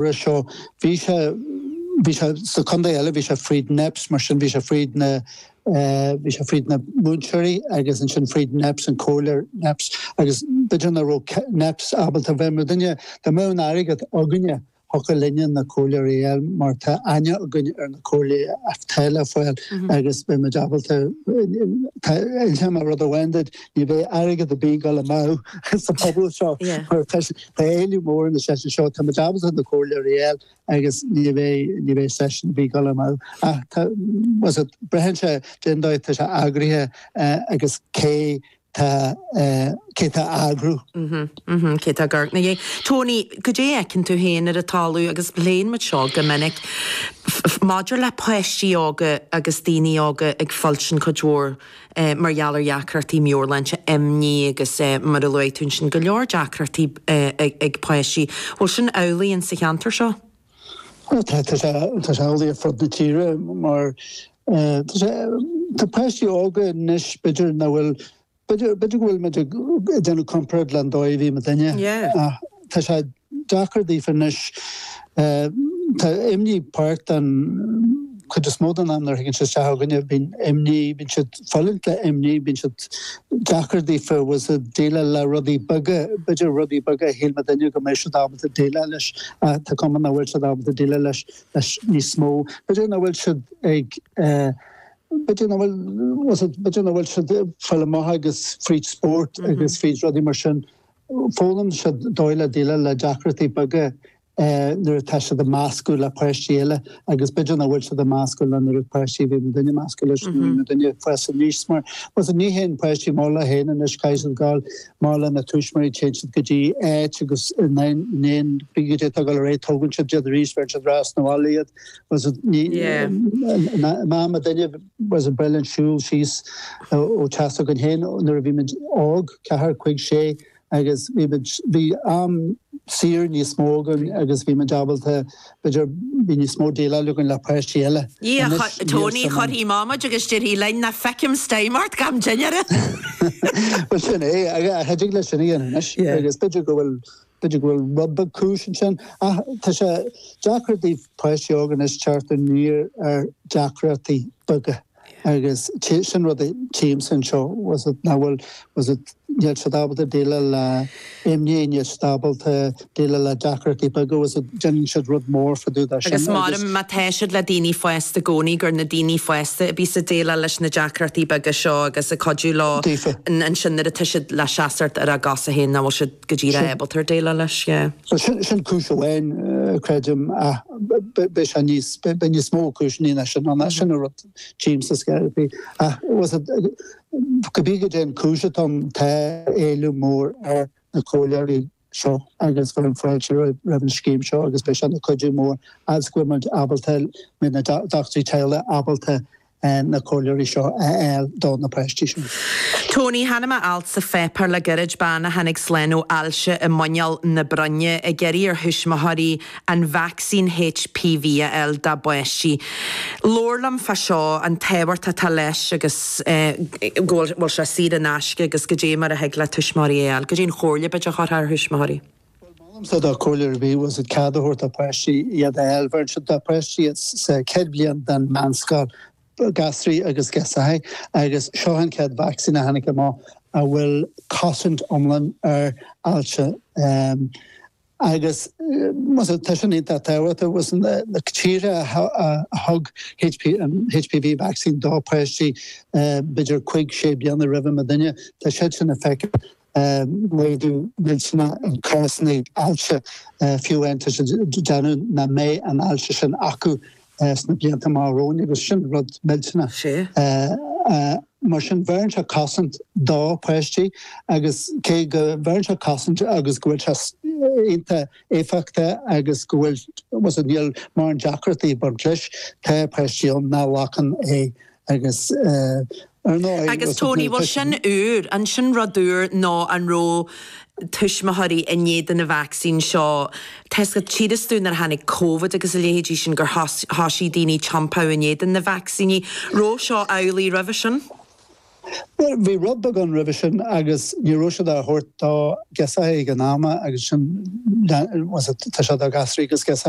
Roimhe seo bhí sé, bhí sé sa chontae eile, bhí sé fríd Neps, mar sin bhí sé fríd na, bhí sé fríd na múinteoirí agus ansin fríd Neps, an comhairleoir Neps, agus b'fhéidir nach raibh Neps ábalta b'fhéidir muidinne dá mbeadh an t-airgead againne thiocfadh linne na comhairleoirí a fháil mar tá aithne againn ar na comhairleoirí atá le fáil agus beidh muid ábalta, tá, inseoidh mé rud amháin duit, Ní bheidh airgead ar bith ag gabháil amú sa phobal seo mar tá éileamh mór ar na seisiúin seo. Tá muid ábalta na comhairleoirí a fháil agus ní bheidh seisiún ar bith ag gabháil amú. Braitheann sé cén dóigh atá sé eagraithe agus cé tá cé tá á eagrú. Cé tá ag amharc ina dhiaidh. Tony, goidé a fheiceann tú féin ar an talamh agus léann muid seo go minic maidir le páistí óga agus daoine óga ag fulaingt cuid mhór mar gheall ar dheacrachtaí meabhairshláinte, imní agus mar a luaigh tú ansin, go leor deacrachtaí ag páistí. Bhfuil sin amhlaidh in sa cheantar seo? Tá sé amhlaidh ar fud na tíre mar tá sé, tá páistí óga anois, b'fhéidir nach bhfuil, b'fhéidir go bhfuil muid ag déanamh comparáid le an dóigh a bhí muidinne, Tá sé deacair daofa anois. Tá imní páirt den chuid is mó den am nuair a thagann siad isteach chugainn. Bíonn imní, bíonn siad ag fulaingt le imní, bíonn sé deacair daofa, bhfuil a fhios agat, déileáil le rudaí beaga, b'fhéidir rudaí beaga a shílfeadh duine go mbeadh siad ábalta déileáil leis ach tá cuma nach bhfuil siad ábalta déileáil leis níos mó. B'fhéidir nach bhfuil siad ag, b'fhéidir nach bhfuil, bhfuil a fhios agat, b'fhéidir nach bhfuil siad ag fáil amach agus fríd spórt agus fríd rudaí mar sin, Foghlaimíonn siad dóigh le déileáil le deacrachtaí beaga nuair atá siad ag meascadh le páistí eile agus b'fhéidir nach bhfuil siad ag meascadh le an oiread páistí a bhí muidinne ag meascadh leis nuair a bhí muidinne ag fás aníos mar bhfuil a fhios agat. Ní théann páistí amach leo féin anois, caithfidh siad gabháil amach lena tuismitheoirí, téann siad go dtí áit agus déanann cibé goidé tá ag gabháil ar aghaidh tógann siad iad arís bheireann siad ar ais 'na bhaile iad agus ní Yeah. An am muidinne as an bpeil, an siúl síos ó teach s'againn féin nuair a bhí muid óg, ceathair, cúig, sé, agus bhí muid, bhí am saor níos mó againn agus bhí muid ábalta, b'fhéidir, bhí níos mó déileáil againn le páistí eile. Anois, níl sin. Tony, chuirfí amach muid agus déarfaí linn, ná feicim steam ort gan dinnéar! Bhuel, sin é, cha dtig leat sin a dhéanamh anois, agus b'fhéidir go bhfuil B'fhéidir go bhfuil rud beag cúis ansin, ach tá sé deacair do pháistí óga anois teacht aniar ar dheacrachtaí beaga agus sin rud a tchímse anseo, bhfuil a fhios agat, nach bhfuil, bhfuil a fhios agat níl siad ábalta déileáil le imní, níl siad ábalta déileáil le deacrachtaí beaga, bhfuil a fhios agat déanann siad rud mór fada de sin Agus agus. m'orm, má tá siad le daoine fásta i gcónaí, gur na daoine fásta a bhíos ag déileáil leis na deacrachtaí beaga seo agus ag cuidiú leo daofa. ansin nuair atá siad le seasamh ar a gcosa féin, nach bhfuil siad. go dtí le ábalta déileáil leis, yeah. So sin sin cúis amháin creidim ach beidh sé níos beidh níos mó cúiseanna ná sin ann, sin an rud tchímsa ar scor ar bith ach bhfuil's agat cibé goidé an chúis atá ann tá éileamh mór ar na comhairleoirí seo agus bhfuil an-fháilte roimh roimh an scéim seo agus beidh sé ina cuidiú mór as go bhfuil muid ábalta go mbeidh na dochtúirí teaghlaigh ábalta ar na comhairleoirí seo a fháil do na páistí seo. Tony, chonaic mé alt sa pháipéar le goirid, bean a tháinig slán ó ailse i muineál na broinne, ag iarraidh ar thuismitheoirí an vacsaín HPV a fháil dá bpáistí. Labhair liom fá seo, an tábhacht atá leis agus eh go bhfuil sé saor in aisce agus goidé mar a thig le tuismitheoirí é a fháil. Goidé an chomhairle b'fhéidir a chuirfeá ar thuismitheoirí? Bhuel, m'anamsa dá comhairle ar bith, bhfuil's agat cead a thabhairt dá bpáistí iad a fháil, bheireann siad do pháistí iad sa chéad bhliain den mheánscoil, gasraí agus girseachaí, agus seo an chéad vacsaín a tháinig amach a bhfuil cosaint iomlán ar ailse. Agus, más ea, tá sin iontach tábhachtach, bhfuil's agat na tíortha a thug HPV vacsaín dá bpáistí b'fhéidir cuig, sé bliana roimh muidinne, tá siad sin ag feiceáil. Laghdú millteanach i gcásanna ailse, fiú amháin tá siad ag déanamh nach mbeidh an ailse sin acu sna blianta amach romhainn agus sin rud millteanach. Mar sin, bheireann sé cosaint do pháistí agus cé go mbeireann sé cosaint agus go bhfuil sé iontach éifeachtach agus go bhfuil, bhfuil's agat, níl mórán deacrachtaí ag baint leis, tá páistí ann nach nglacann é Agus, ar ndóigh, Agus, Tony, bhuel, sin úr. An sin rud úr nó an raibh tuismitheoirí in éadan an vacsaín seo, tá's agat, déarfas tú nuair a tháinig Covid agus a leithéidí sin gur thoisigh daoine ag tiompáil in éadan na vacsaíní? Raibh seo amhlaidh roimhe sin? Bhuel, bhí rud beag ann roimhe sin agus ní raibh siad á thabhairt do ghirseachaí ag an am agus sin, anois tá sé do ghasraí agus girseachaí.